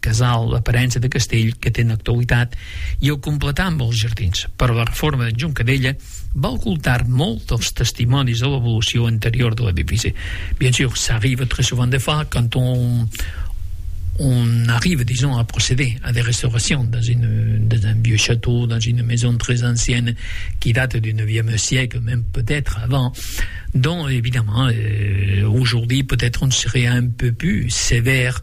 Casal, l'aparença de castell que té en l'actualitat i el completar amb els jardins, però la reforma d'en John Cadella va ocultar molt dels testimonis de l'evolució anterior de l'edifici. Bien sûr, ça arrive très souvent de faire quand on, on arrive, disons, à procéder à des restaurations dans, une, dans un vieux château, dans une maison très ancienne qui date du 9e siècle, même peut-être avant. Donc, évidemment, euh, aujourd'hui, peut-être on serait un peu plus sévère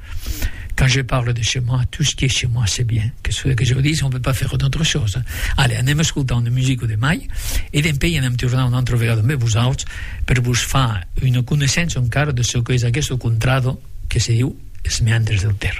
Quand je parle de chez moi, tout ce qui est chez moi, c'est bien. Qu'est-ce que vous voulez que je vous dise? On ne peut pas faire d'autre chose. Allez, anem escoltar una musica de mai e dempuèi anem tornar una altra vegada amb vosauts per vos far una coneissença encara de çò que es aguest contrado que se diu es meandres del Ter.